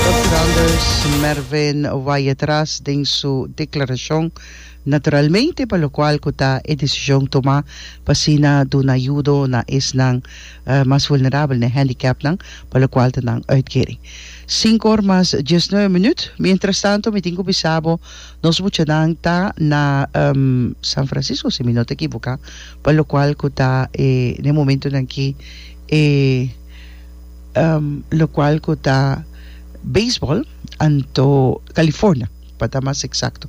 Dòkter Anders Mervyn waya tras den su deklarashon, Naturalmente pa lokual ku ta e desishon tomá pa asina duna yudo na esnan mas vulnerabel, na e hendikèpnan pa lokual ta nan uitkering. Sinku or mas dies nuebe minüt. Mientrastanto mi tin ku bisa bo nos muchanan ta na San Francisco si mi no ta ekivoká, pa lokual ku ta e na e momentunan aki e locual cu ta Baseball, anto California pa ta mas exacto.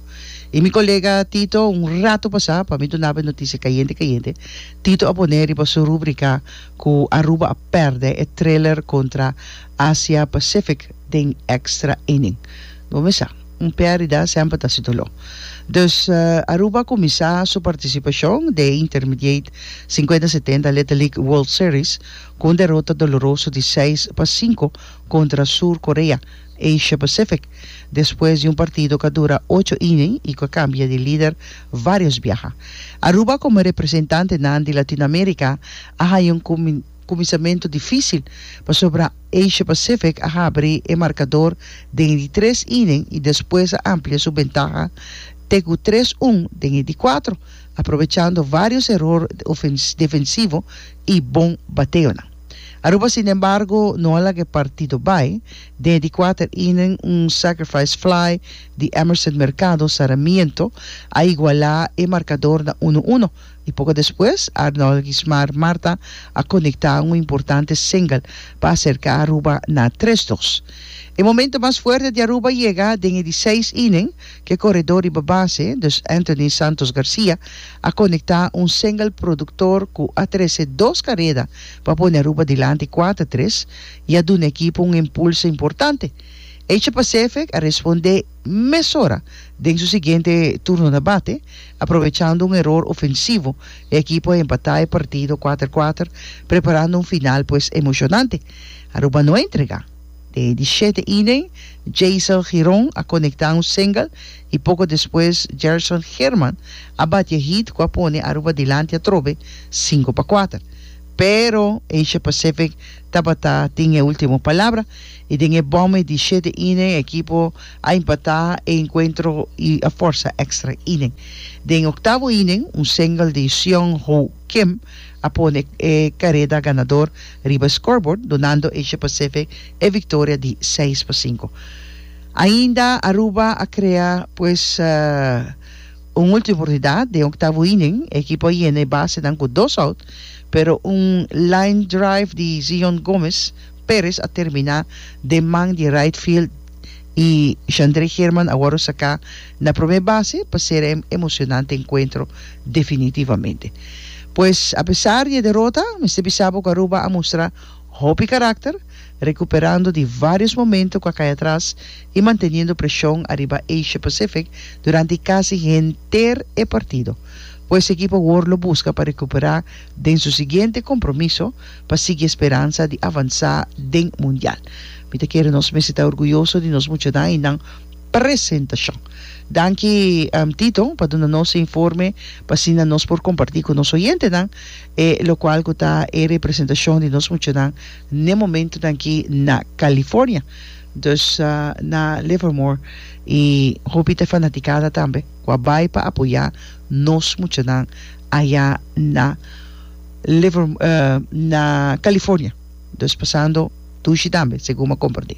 Y mi colega Tito un rato pasa pa mi dunaba e noticia cayente cayente, Tito a pone riba su rubrica cu Aruba a perde e thriller contra Asia Pacific den extra inning. Bo mi sa, un perdida semper ta si dolor. Dus Aruba a cuminsa su participacion den intermediate cincuenta setenta Little League World Series, Ku un derota doloroso di seis pa sinku kontra Sur Korea, Asia Pacific, despues di un partido ku a dura ocho iña i ku a kambia di lider vários biaha. Aruba komo representantenan di Latinoamérika a haña un kuminsamentu difísil, pasobra Asia Pacific a habri e markador den e di tres iña i despues a amplia su bentaha te ku tres un den e di kuatro, aprobechando varios eror defensivo y bon bateonan. Aruba sin embargo no a laga e partido bay den di kuater inning, un sacrifice fly di Emerson Mercado Saramiento a iguala e markador na uno uno y poco despues Arnold Gismar Marta a konekta un importante single pa aserka Aruba na tres dos. E momento mas fuerte di Aruba yega den e di seis inning Ke koredó riba base, dus Anthony Santos Garcia, a konektá un single produktor ku a trese dos kareda pa pone Aruba dilanti kuater tres i a duna e ekipo un impulso importante. Asia Pacific a respondé mesora den su siguiente turno na bate, aprovechando un eror ofensivo. E ekipo a empatá e partido kuater kuater, preparando un final pues emoshonante. Aruba no a entregá. Dei di shete inen, Jaisel Giron a konekta un single i poko despues Gerson German a bati e hit ku a pone Aruba dilanti atrobe sinku pa kuater. Pero Asia Pacific tabata tin e ultimo palabra i den e bòmei di shete inen e ekipo a impatá e enkuentro i a fòrsa èkstra inen. Den e oktavo inen, un single di Seonho Kim a pone e kareda ganador riba e scoreboard, dunando Asia Pacific e victoria di seis pa sinku. Ainda Aruba a crea pues un ultima oportunidad den octavo inning, e ekipo a yena e basenan cu dos out, pero un line drive di Zion Gomez Perez a termina den man di right field y Xandre German a wòrdu saca Na prome base pa sera e emocionante encuentro definitivamente. Pues a pesar di e derota, mester bisa bo cu Aruba a mustra hopi caracter, recuperando di varios momento cu a cay atras y manteniendo presion ariba Asia Pacific durante casi henter e partido. Pues e ekipo awor lo busca pa recupera den su siguiente compromiso pa sigui e speransa di avansa den Mundial. Mi ta kere nos mester ta orguyoso di nos muchanan y nan. Presentacion. Danki Tito pa duna nos e informe pa asina nos por comparti cu nos oyentenan e locual cu ta e representacion di nos muchanan n'e momentonan aki na California. Dus na Livermore y hopi ta e fanaticada tambe cu a bay pa apoya nos muchanan aya na Livermore, na California. Dus pasando dushi tambe segun bo a comparti.